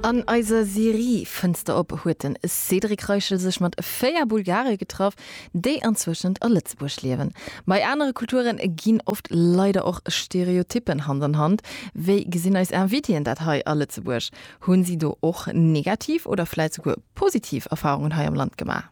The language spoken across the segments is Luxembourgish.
An eiser Serie Fënster op huet de Cédric Reichel sech mat 4 Bulgare getraff, déi anzwëschent a Lëtzebuerg liewen. Bei anere Kulture ginn oft leider och Stereotyppen Hand an Hand. Wéi gesinn eis Invitéen dat hei a Lëtzebuerg? Hunn si do och negativ oder vläit souguer positiv Erfarungen hei am Land gemaach?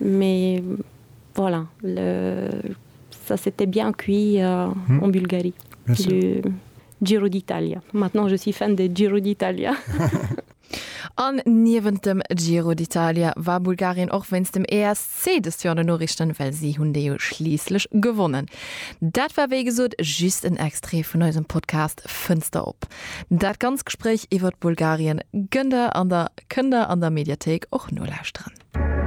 Mais voilà, le ça s'était bien cuit en Bulgarie, le Giro d'Italia. Maintenant je suis fan de Giro d'Italia. An niewent dem Giro d'Italia war Bulgarien och wéinst dem ESC dëst Joer an de Noriichten, well si hunn dee jo schliisslech gewonnen. Dat war wéi gesot just en Extrait vun eisem Podcast Fënster op. Dat ganz Gespréich iwwert Bulgarien gënn der an der kënn der an der Mediathéik och nolauschteren.